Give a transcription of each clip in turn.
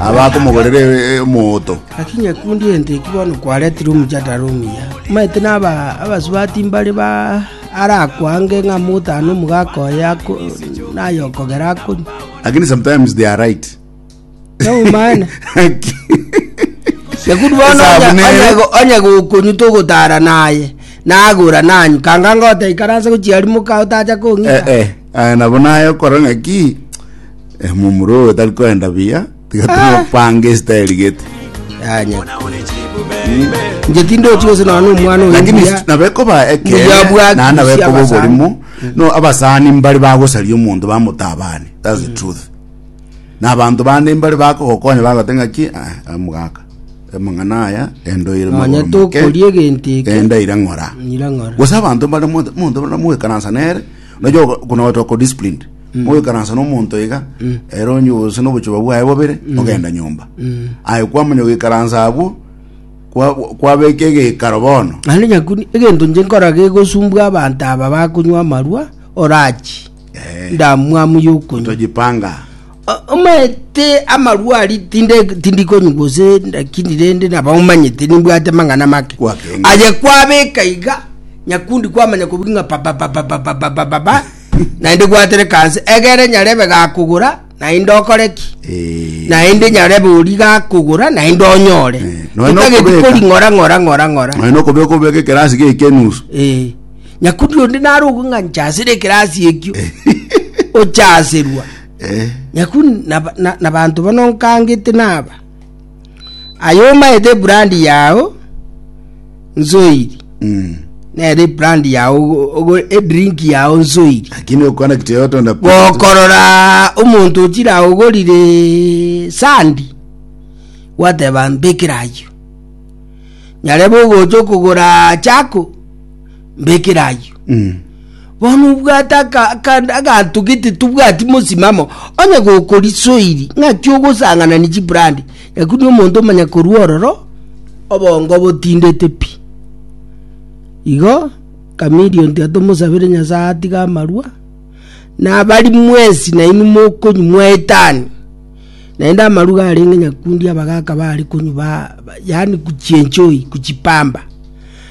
abakomogorera omooto. Naki nyakundi ente ki bono kwaretirwe omochatara omuya, omanyete naba abasubati mbare ba arakwange ng'a motano omogaka oye ako naye okogera akonywa. Lakini sometimes they are right. Noumana. Nyakundi bono Esabu onya- nere. onya- onya gokonywa togotara naye nagora nanywa kanga ngotaikaranse gochiarimoka otacha kong'ita Eh, eh. Eh, nabo naye okora ng'aki emumura oyo tari koenda buya tiga tumopanga esitayeri gete Yanya. Nje tindochi gose none omwana oyo lakini mbuya. nabekoba Mbuya bwa ekere nana kisi bekoba abasani. oborimo no abasani mbari bagosaria omonto bamotabane that's the truth na abanto bande mbari bakogokonya bagote ng'aki "Ah, omogaka amang'ana aya endoire Nonya tokoria egento eke. endaire ng'ora Nyira ng'ora. gose abanto mbare monto monto baramoekaransa nere nojo kuna otoko disciplined moikaransa nomonto iga ere onye ose nobochoba bwaye bobere ogenda nyomba aye kwamanya goikaransa abwo kwa- kwabeka egeikaro bono naende nyakuni egento nche nkora gegosumbwa abanto aba bakonywa amarwa orachi Eh. ndamwamu yokunywa tojipanga Omanyete amarua aria tindi konywa gose ndakini rende naba omanyete nimbwate amang'ana make aye kwabeka iga nyakundi kwamanya kobiri ng'a babababababababa naende gwatere kanse egere nyarebe gakogora naende okoreki naende nyarebe ori gakogora naende onyore ekageti kori ng'ora ng'ora ng'ora ng'ora naende okobeka obeka ekerasi geke enusu nyakundi onde nare ogwe ng'a nchasire ekerasi ekio ochaserwa Nyaku nabanto bono nkangete naba, aye omaete ebrandi yao nsoiri, nere ebrandi yao edrink yao nsoiri, lakini okwana kitu yotonda gokorora omonto ochire agogorire sandi gwateba mbekera ayio nyarebe ogocha okogora chako mbekere ayio Mm. bono obwate aka- aka- aganto gete tobwati mosimamo onye gokorisoiri ng'aki ogosanganani chibrandi nyaku ni omonto omanya korwa ororo obongo botindete pi igo chameleon tiga tomosabere nyasae atige amarwa nabari mwesi nainwe mokonywa mwaetani naende amarwa iga arenge nyakundi abagaka bare konywa ba- ba- yaani kuchienjoy kuchipamba.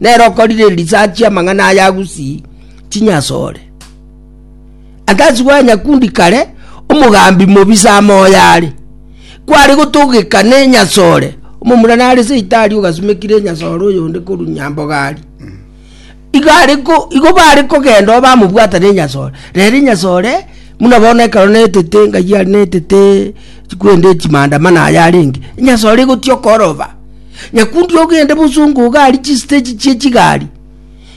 Nere okorire erisachi amang'ana aya agusii chinyasore. Atasi bwa nyakundi kare omogambi mobisa amoya are kware gotogeka ne nyasore omomura nare seitari ogasumekire nyasore oyonde koru nyamboga ari igo are ko igo bare kogenda obamobwata ne nyasore rere nyasore muna bono ekero netete ngai are netete chikwende chimandamano aya arenge nyasore egotia okoroba. Nyakundi ogende bosongo iga aria chisteji chie chigari,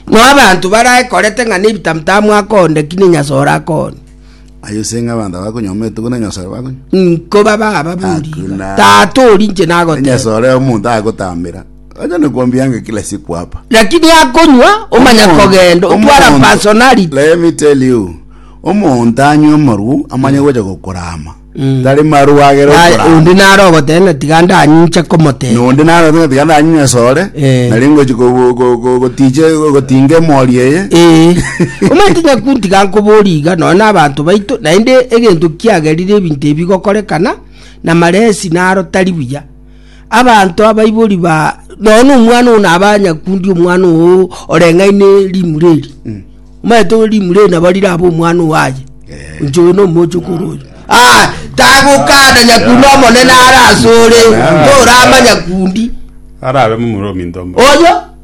noe abanto barae korete ng'a nebitamutamu akonde ki nenyasore akonde. Aye ase ng'a abanto abakonyoma etuko nenyasore bakonywa. Nko baba aba boriga. Hakuna. Tata ori inche nagoteba. Nenyasore omonto agotambera. Acha nikwambiange kila siku hapa. Lakini akonywa omanya Omonto- kogenda otwara omonto- personality. Let me tell you. Omonto anywa amarwo amanye gocha gokorama. Mm. tari marwa agere Naye okorama. onde nare ogoteba ng'a tiga ndaninche komoteba. Na onde naro ng'a tiga ndanywe esore, Eh. nari ngochi ko- ko- ko- ko- gotiche gotinga emori eye. Ee, omanyete nyaku ntiga nkoborie iga nonya na abanto baito, naende egento kiagerire ebinto ebi bigokorekana, na maresi naro tari buya. Abanto abaibori ba nonya omwana oo nabe anyakundi omwana oo oreng'aine rimura eri, omanyete ore rimura eri nabo rirabe omwana oo aye, inche oyo nomoche okoro oyo. Ah, tagokana nyakundi omonene are ase ore, toramanya kundi. Arabe momura ominto mbo. Oyo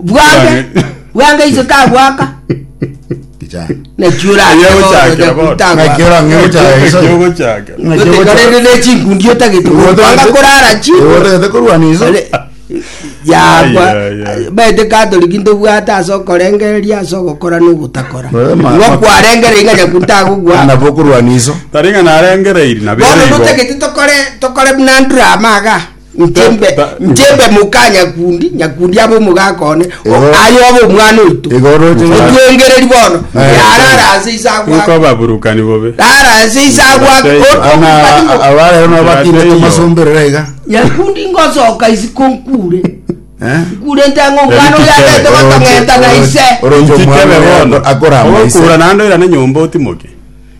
bwange bwange ise tagwaka Kijana. naki Eria gochakera bono. Naki orange gochaya Naki iso. ogochakera. Naki ogocha- otekarende nechinkundi Iwe otagete otagete- kwanga korara chi Iwe otagete korwana iso. Ole- yakwa Ai, ai, ai. baete katoriki ntobwate ase okorengereria ase ogokora n'ogotakora Oe, ma- igo ma- kwarengere iga nyaku ntagogwaka Nabo okorwana iso. Taringa narengereiri na bono bere igo. notagete tokore tokore buna ndrama iga Nchembe, Ba- ba- nchembe muka nyakundi, nyakundi abe omogaka one, Igo- aye obe omwana oito. Igo oroche ng'a- Otwengereri bono, Eh. yarara ase ise Iko agwake. ababurukani bobe. Rara ase ise agwake. Bashaika. Oto- Ana abarero nabo batinde Bashaika. tomasomberera iga. Nyakundi ngosoka isi konkure. Eh? Nkure ntango omwana Eriki oyo kebe, agete gotong'enta na ise. Oroche Inchikebe omwana bono. akora ama ise. Ogokura naende oirane nyomba otimoke.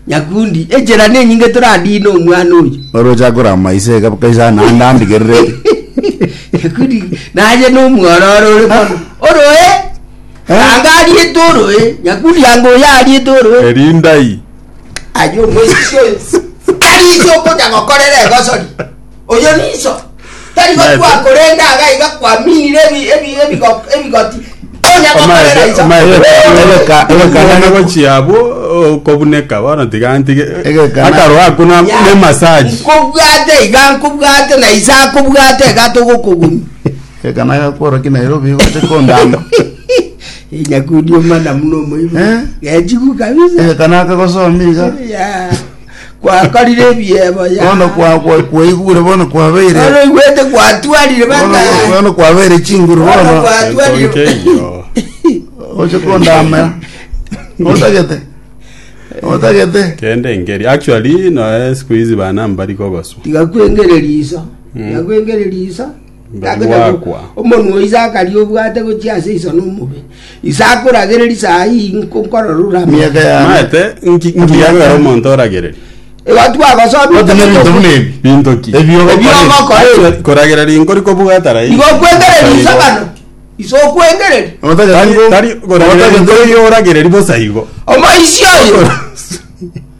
Nyakundi, echera nenyinge toradine omwana oyo. Oroche akore amaiso iga kabisa naende andigererete. Nyakundi, naye nomwororo ore mono. Oroe! Anga ariete oroe. Nyakundi, anga oyo ariete oroe. Erindai. Aye omoisisi oyo. Tari iso okonya gokorera egosori. Oyo ninso, tari Omanyete. gokwa, korende agai gakwaminire ebi- ebi- ebigo- ebigoti, tonya gokorera inso. Egekana gochia abwo okobuneka bono tiga ntige Egekana. akaro ako na Ya, ne massage nkobwate iga nkobwate na ise akobwate iga togokoguni Ekana gakworoki Nairobi gote kondama. nyakundi omana muno omoibo Eh? gechigu kabisa Ekana kagosomi iga. Ya. Gwakorire ebiebo ya. Bono kwa- kwa- kwaigure bono kwabeire Bono igwete gwatwarire bono bang'aini. bono kwabeire chinguru Bono bono gwatwarire. Tonkeyo. oche kondamera otagete otagete Kende ngeri. Actually, no, eh, siku hizi bana mbari kogoswa. Tigakwengere riso. Tigakwengere riso. mbere gwakwa. Omonwa o Isaka aria obwate gochia ase iso nomobe. Isaka oragereri saa ii nko nkororure amang'ana. Emiaka yane Maete, nki- nki yabera omonto oragereri? Igo twagosomire Ote ne ebinto buna ebi Binto ki? Ebi ogokora Ebi ebi. ogokora ebi. Achia koragera rinko rikobwata rairi. Igo okwengereria iso bano. Iso okwengereria. Otagete Tari- tari koragera rinko ri'oragereri bosa igo. Omoisia oyo.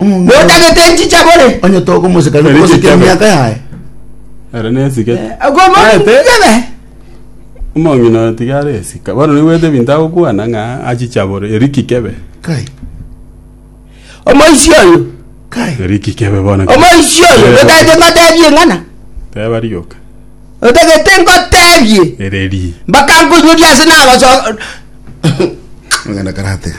Notagete nchicha bore. Onye tokomosekana Ere kogoseka chichabe. emiaka yaye. Ere nesike. Okomoribe. Omong'ina oyo tiga are esika. Bono naigwete ebinto agokwana ng'a achichabore. Eri kikebe. Kai. Omoisi oyo. Kai. Eri kikebe bono. Omoisi oyo. Ere- Notagete ngotebie ng'ana. Teba rioka. Notagete ngotebie. Ere ri. Mpaka nkonyoria ase nagoso. Ng'ana karatega.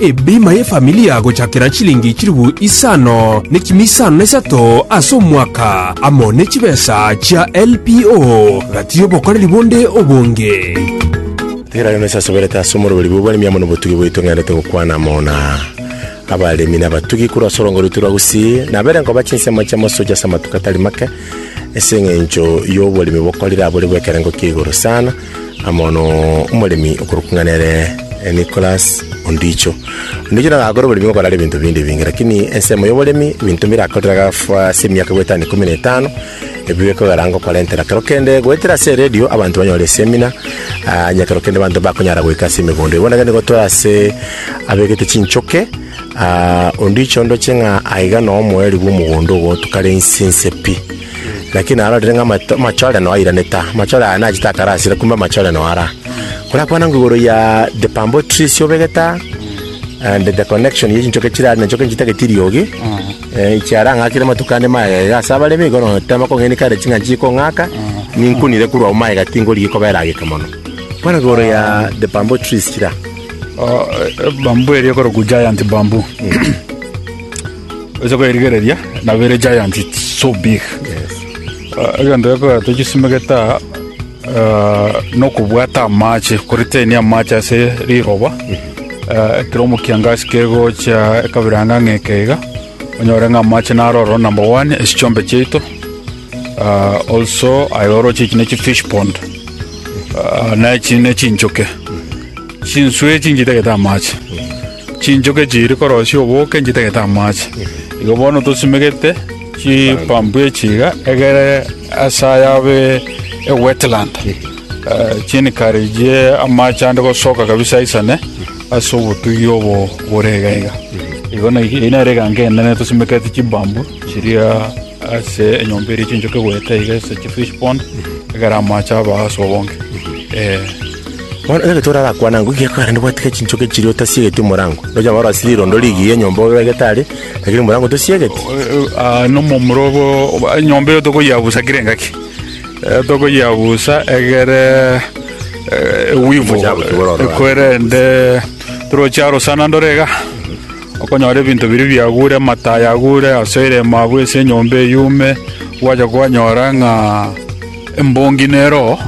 Ebima y'efamilia gochakera chilingi chilifu isano nekimi isano nesato ase omwaka, amo ne chibesa chia LPO gati y'obokoreri bonde obonge. Tera rero nase asoberete ase omoroberi bw'oboremi amo nobotugi bwaito ng'endete gokwana amo na abaremi na abatugi korwa ase orongo rwaito rwa Gusii, nabere nkoba chinsemo chia mosocho ase amatuko atari make ase eng'encho y'oboremi bokorire abore bw'ekerengo kia igoro sana. na mono omoremi okorokwa ng'a nere eh, Nicholas Ondicho. Ondicho nigo agakora oboremi okorara ebinto binde ebinge, lakini ensemo y'oboremi ebinto mbirakorire agafa ase emiaka goetana ikomi na etano ebio bikogera ngokorentera kero kende goetera ase eredio abanto banyore esemina ah, onye kero kende abanto bakonyara goika ase emegondo bono ekero nigotwara ase abegete chinchoke ah, Ondicho ndoche ng'a aiga noo omoeri bw'omogondo ogo tokare inse inse pi Naki narorire ng'a amachorerano airanete aa, amachore aya nachete akarasire kumbe amachorerano aya ara. Korakwana ng'a igoro ya The Bamboo Tree ase obegete aa, and the connection ye chinchoki chire aria na enchoki nchitagete eriogi, eh, echiara ang'akire amatuko ande magega ase abaremi, igo notema kong'eni kare ching'ancho chikong'aka, ninkunire korwa ao magega tingorigia koba erageka mono. Kwana igoro ya The Bamboo Trees chire aa. Bamboo eria ekorokwa giant bamboo. Oche kwerigereria nabere giant it's so big Ah, egento gekora tochisimegete aa ah, nokobwata amache koriteni amache ase riroba Ah, ekero omokiangasi kegocha ekabira ng'a ng'eke iga onyore ng'a amache naroro number one esichombe chiaito Ah, also ayoroche echi ne chifish pond Ah, na echi ne chinchoke chinswe chinchitagete amache Chinchoke chiiri korosia oboke nchitagete amache. Igo bono tosimegete chipampu echi iga egere ase ayabe ewetland, eh, chiencourage amache ande gosoka kabisa aisane ase obotugi obo bore iga iga. Igo na- eyio nere eganga enene tosimekete chibambu chiria ase enyomba eria chinchoke goeta iga ase chifish pond egere amache abe ase obonge. Eh. Bono ekero Petero arakwane agwo, ekiagera karende gwatiga chinchoki chiria otasiegeti omorango. Roche abana barasire rirondo rigiya enyomba obe obegete are, lakini omorango tosiegeti. Ah, nomomura obo obo- enyomba eyo tokoyeabusa kera engaki Eh, tokoyeabusa egere eh, ewivu Omochabu tibora orora. ekwerende toroche arosana ndore iga okonyora ebinto biri biagure amatayi agure asoire emabwe ase enyomba eyume gwacha kwanyora ng'a Embongi nero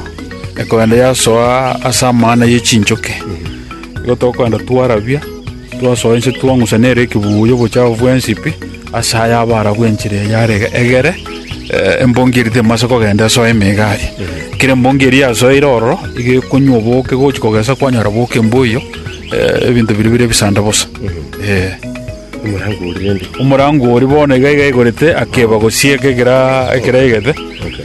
ekoenda yasoa ase amana ye chinchoke. Igo tokoenda twarabia, twasoa inse twang'usa nero ekebuya obochafu bwensi pi ase aya Abaarabu enchera eya are egere. Eh, Embongi eri temase kogenda esoe emeiga aria. Ekero embongi eri yasoeire ororo, igo ekonywa oboke gochi kogesa kwanyora boke mboyo, eh, ebinto biria bire bisanda bosa. Eh. Omorango oria rende. Omorango oria bono iga iga igorete akeba gosieka ekera ekera egete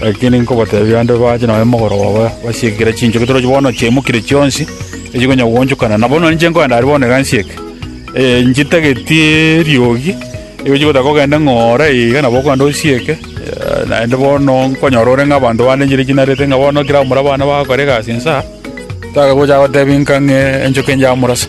lakini nkobatebia ande bache nonye mogoroba ba basieke kera chinchoki torochi bono chiaimokire chionsi echigonya goonchokana nabo nonye inche nkoenda aria bono iga nsieke eh, nchitageti eriogi igo chigotaka ogende ng'oore iga nabo okogenda osieke eh, naende bono nkonyora ore ng'a abanto bande enchera echinarete ng'a bono kera omura abana bagakora egasi insa takagocha gotebia nka ng'e enchoki enchaya morasa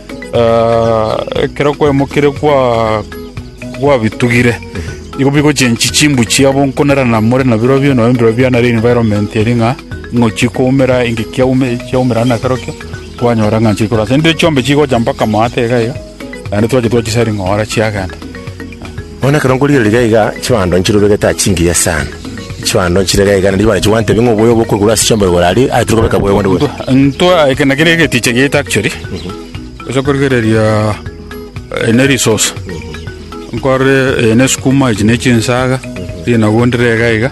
Ekero kwaimokire gwabitugire, nigo bigochenchi chimbu chiabo nkonerana more nabirobio, nabo embiro biane are environment eria ng'a ing'ochie koumera inki kiaumera na kerokio kwanyora ng'a nchire korwa ase. Rende chionsi chigocha mpaka moata iga iga, naende twachia twachisari'ngora chiagenda. Bono ekero nkorigera riria iga, chibando nchirobe geta chingiya sana. Chibando nchire iga iga, na ribare chigwante bing'we oboyo obo okorigwa ase chiombero igoro aria, aye tiri kobeka boyo bonde bonsi. Ntwa eke na keria egetiche giaito actually ase okorigereria eh, ne resource nkore eh, ne sukuma echi ne chinsaga rinagu ndire iga iga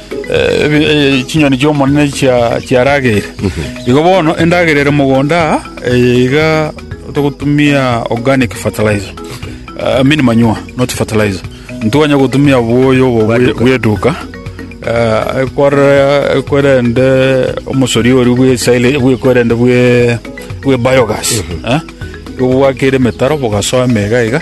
chinyoni chi'Omonene chiarageire. Igo bono endagera ere mogondo aa, eye iga togotumia organic fertilizer, I mean manure, not fertilizer. Ntikonya gotumia oboyo obo bwe- bw'eduka eh, ekwarera- ekwerende omosori oria bwe silage- bwe- ekwerende bwe- bwe biogas eh, igo bwakere emetaro bogasoa emega iga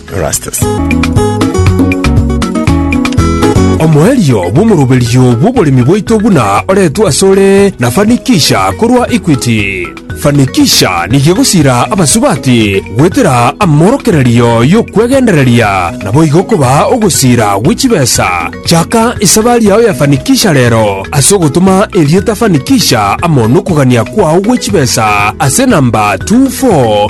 Omoerio bw'omoroberio bw'oboremi bwaito buna oretwe asore na Fanikisha korwa Equity. Fanikisha nigo egosira abasubati goetera amorokererio y'okwegendereria naboigo kobaa ogosira gwe chibesa. Chaka esabari yao ya Fanikisha rero ase ogotoma erieta Fanikisha amo nokogania kwao gwe chibesa ase namba 24.